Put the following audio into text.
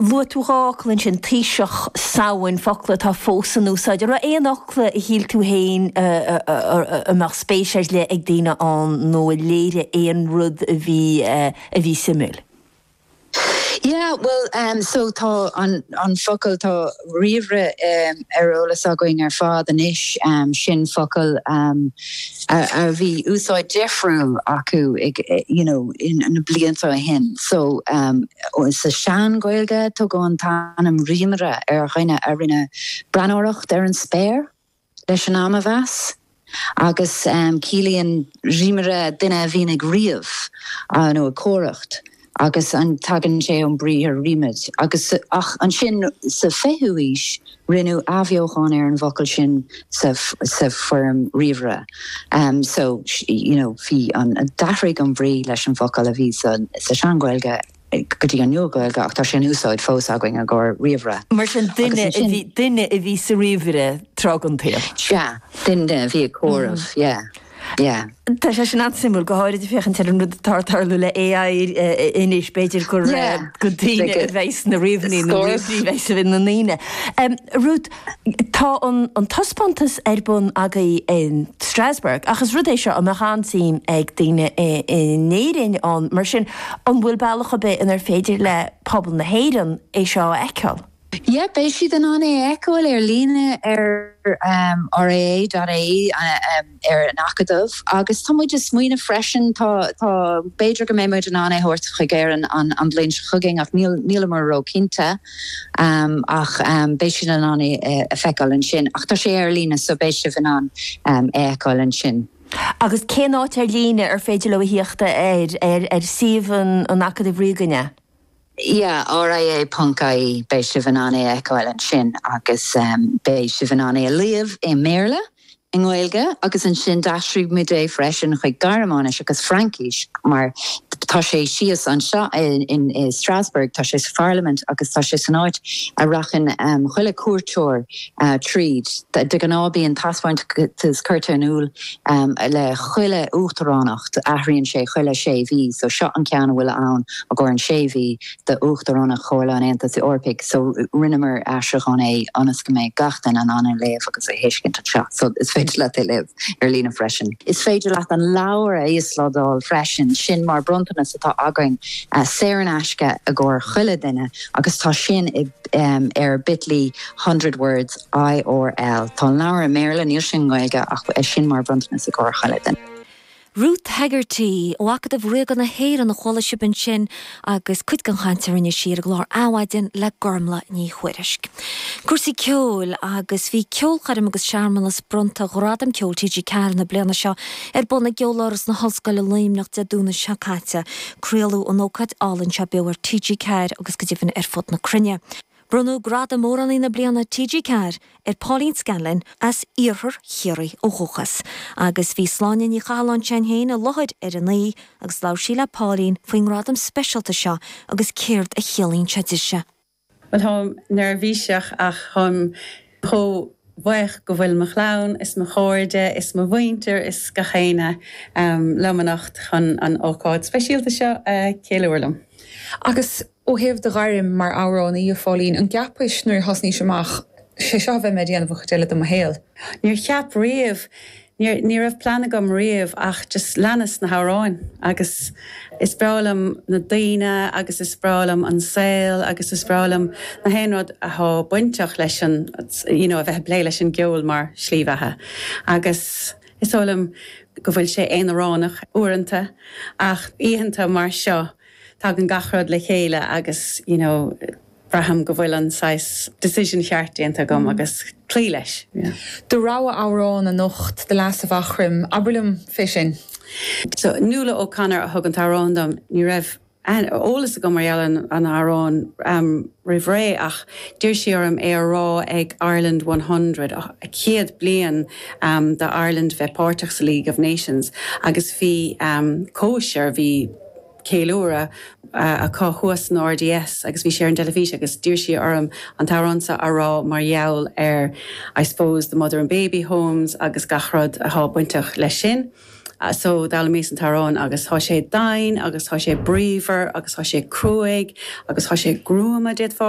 Luaigh tú dhá fhocal ansin, Taoiseach, Samhain, focla atá fós in úsáid. An raibh aon fhocal a shíl tú féin a mbeadh spéis ar leith ag daoine ann nó a léirigh aon rud a bhí, a bhí suimiúil? Yeah, bhuel, so tá an focal, tá ríomhaire ar eolas againn ar fad anois, sin focal. A bhí úsáid difriúil acu you know na blianta ó shin. So sa Sean-Ghaeilge tugadh an t-ainm rímaire ar dhuine a rinne breathnóireacht ar an spéir leis an am a mheas agus ciallaíonn rímaire duine a bhíonn ag ríomh nó ag comhaireamh. agus tagann sé ón briathar rímid, agus, ach ansin sa 20ú aois rinneadh athbheochán ar an bhfocal sin sa foirm ríomhaire. So you know bhí an, d'athraigh an bhrí leis an bhfocal a bhí sa Sean-Ghaeilge go dtí an Nua-Ghaeilge ach tá sé in úsáid fós againn i gcomhair ríomhaire. Mar sin duine a bhí, duine a bhí sa ríomhaire tráth den tsaol. Sea, duine a bhí ag comhaireamh, yeah. Yeah. Tá sé sin an-suimiúil, go háirid ag féachaint ar an rud atá ag tarlú le AI anois, b'fhéidir gur go daoine a bheidh sna ríomhairí nó ríomhairí a bheidh ina ndaoine. Ruth, tá an taispeántas ar bun agaibh in Strasbourg ach is rud é seo a mbeadh an-suim ag daoine in Éirinn ann, mar sin an bhfuil bealach ar bith inar féidir le pobal na hÉireann é seo a fheiceáil? Yep, beidh siad in ann é a fheiceáil ar líne ar ria.ie, ar an Acadamh agus tá muid ag smaoineamh freisin, tá, tá, b'fhéidir go mbeidh muid in ann é a thabhairt chuig Éirinn an bhliain seo chugainn ach nílimid róchinnte ach beidh siad in ann é a feiceáil ansin ach tá sé ar líne so beidh sibh in ann é a fheiceáil ansin. Agus cén áit ar líne ar féidir leo a thíocht air, ar suíomh an Acadaimh Ríoga, an ea? Yeah, R.I.A. Ponc IE, beidh sibh in ann é a fheiceáil ansin agus beidh sibh in ann é a léamh i mBéarla, i nGaeilge agus ansin d'aistrigh muid é freisin chuig Gearmáinis agus Fraincis mar tá sé síos anseo in Strasbourg, tá sé sa Pharlaimint agus tá sé san áit a rachann chuile cuairteoir tríd. De ghnáth bíonn taispeántas curtha in iúl. le chuile uachtaránacht, athraíonn sé chuile sé mhí so seo an ceann a bhfuil ann i gcomhair an sé mhí d'uachtaránacht Chomhairle an Aontais Eorpaigh so rinneamar aistriúchán é ionas go mbeadh gach duine in ann é a léamh agus a thuiscint anseo so is féidir leat é léamh ar líne freisin. Is féidir leat an leabhar a íoslodáil freisin, sin mar bronntanas atá againn saor in aisce i gcomhair chuile duine agus tá sin ar bit ly hundred words, IR L. Tá an leabhar i mBéarla, níl sé i nGaeilge ach beidh sin mar bhronntanas i gcomhair chuile dhuine. Ruth Hegarty, ó Acadamh Ríoga na hÉireann a chuala sibh ansin agus cuid den chaint a rinne sí ar an gclár Adhmhaidin le Gormlaith Ní Thuairisg. Cúrsaí ceoil agus bhí ceolchoirm agus searmanas bronnta Ghradaim Ceoil TG4 na bliana seo ar bun i gCeoláras na hOllscoile Luimneach Dé Domhnaigh seo caite. Craoladh an ócáid álainn seo beo ar TG4 agus go deimhin ar fud na cruinne. Bronnadh Gradam Amhránaí na Bliana TG4 ar Pauline Scanlon, as Iarthar Chiarraí ó dhúchas, agus bhí Sláine Ní Chathalláin, s'againn féin, i láthair ar an oíche agus labhair sí le Pauline faoin ngradam speisialta seo agus céard a chiallaíonn sé di. Bhuel, táim neirbhíseach ach táim chomh buíoch go bhfuil mo chlann is mo chairde is mo mhuintir is gach éinne liom anocht chun an ócáid speisialta seo a cheiliúr liom. Agus ó thaobh do ghairm mar amhránaí, a Pauline, an gceapais nuair a thosnaís amach, 'sé seo a bheidh mé ag déanamh an chuid eile de mo shaol? Níor cheap riamh Níor, ní raibh plean agam riamh ach just leanas na hamhráin agus is breá liom na daoine agus is breá liom an saol agus is breá liom na haon rud athá bainteach leis an you know a bheith a' plé leis an gceol mar shlí bheatha agus is eol dom go bhfuil sé aonaránach uaireanta ach oícheanta mar seo tagann gach rud le chéile agus you know Braithim go bhfuil an saghas decision cheart déanta agam agus cloí leis, yeah. Do rogha amhrán anocht, The Lass of Aughrim, abair liom fé sin. So, Nuala O'Connor a thug an t-amhrán dom. Ní raibh aithne, eolas agam mar gheall ar an amhrán roimh ré ach d'iarr sí orm é a rá ag Ireland One Hundred, céad bliain do Ireland bheith páirteach sa League of Nations agus bhí cóisir, bhí. ceiliúradh acu thuas san RDS agus bhí sé ar an dteilifís agus d'iarr sí orm an t-amhrán seo a rá mar gheall ar I suppose the mother and baby homes agus gach rud atá bainteach leis sin. So d'fhoghlaimíos an t-amhrán agus tá sé doimhin agus tá sé bríomhar agus tá sé cruaidh agus tá sé gruama, d'fhéadfá a rá.